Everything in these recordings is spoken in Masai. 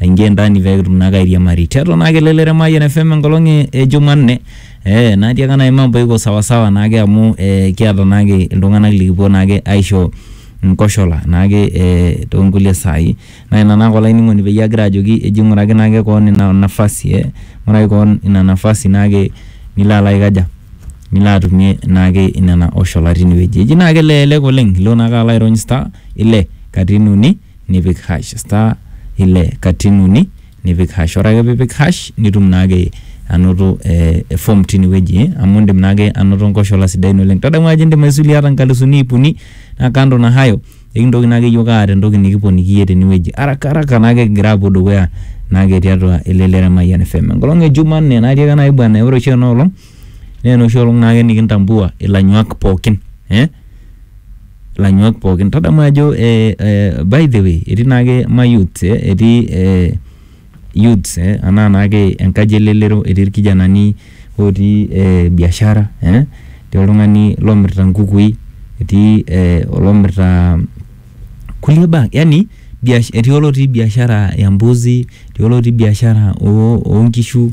aingie ndani pee kitum naake airiamari tiatua naake elelero e Mayian FM enkolong e- e Jumanne eh, natii ake naai mambo iko sawasawa naake amu eh, kiata naake iltung'anak likipuo naake aisho nkoshola naake eh, toonkulie saai naa ina naake olainining'oni peyie agira ajoki eji ng'uraki naake koon ina nafasi eh, ng'uraki koon ina nafasi naake nilo alo aikaja nilo atumie naake nena oshola tinewueji eji naake elelek oleng ilo naake alo airony star ile katitin uni nipik hash star ile katitin uni nipik hash ore ake piipik hash nitum naake anoto ee e form tine wueji amu indim naake anoto nkoshola sidain oleng'. Tadamu ajo indim aisuluie ata nkalisuni iip uni naa kando na hayo kekintoki naake iyiok aata entoki nekiponiki iyie tene wueji haraka haraka naake king'ira aapuo dukuya naake tiatua elelero e Mayian FM. Enkolong' e jumanne natii ake nanu aiba naa ore oshi ena olong'... Naa enoshi olong naake nikintambua ilanyuak pookin eh, ilanyuak pookin. Tadamu ajo eh, eh, by the way etii naake ma youths eh, etii eh, youths eh, anaa naake enkaji elelero, etii ilkijanani otii eh, biashara eh, etii oltung'ani lomirita nkukui, etii eh, olomirita kulie baa yani biash, etii olotii biashara ya mbuzi, etii olotii biashara oo nkishu.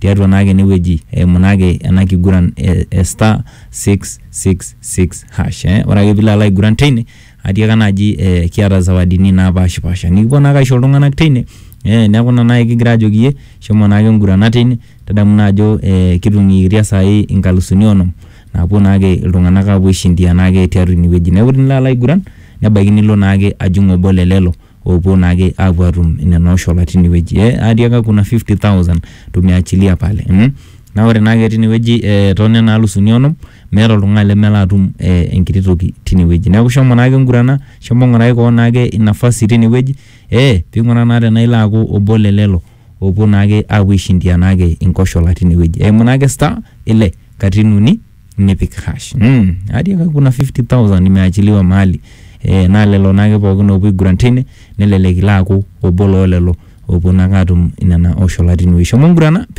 tiatua naake ene wueji eimu naake ena kiguran e star six six six hash eh. Ore ake piilo alo aiguran teine atiaka naaji eh, kiata zawadini naapashipasha nikipuo naake aisho iltung'anak teine eh, neeku ina naai kigira ajoki iyie shomo naake ngurana teine tadamu naa ajo eh, kitung'ikitia saai inkalusuni onom naapuo naake iltung'anak aapuo aishindia naake tiatua ine wueji neeku tinilo alo aiguran nebaiki nilo naake ajing obo le lelo opuo naake apuo atum nena oshola tinewueji eh, atiaka kuna 50000 tumeachilia pale mm? na ore naake tinewueji eh, tonena alusuni onom meeta oltung'ani lemelo atum eh, enkiti toki tinewueji neeku shomo naake ngurana shomo ng'urai koon naake inafasi tinewueji eh, ping'uraa naa tenaa ilo aaku obo lelelo opuo naake apuo aishindia naake inkoshola tinewueji eimu naake star ile katitin uni. nipik hash mm. hadi aka kuna 50000 imeachiliwa mahali e, naa lelo naake pookin oopuo aiguran tine nelelek ilo aaku obo loo lelo oopuo naake aatum nena oshola tinewueji shomo ngurana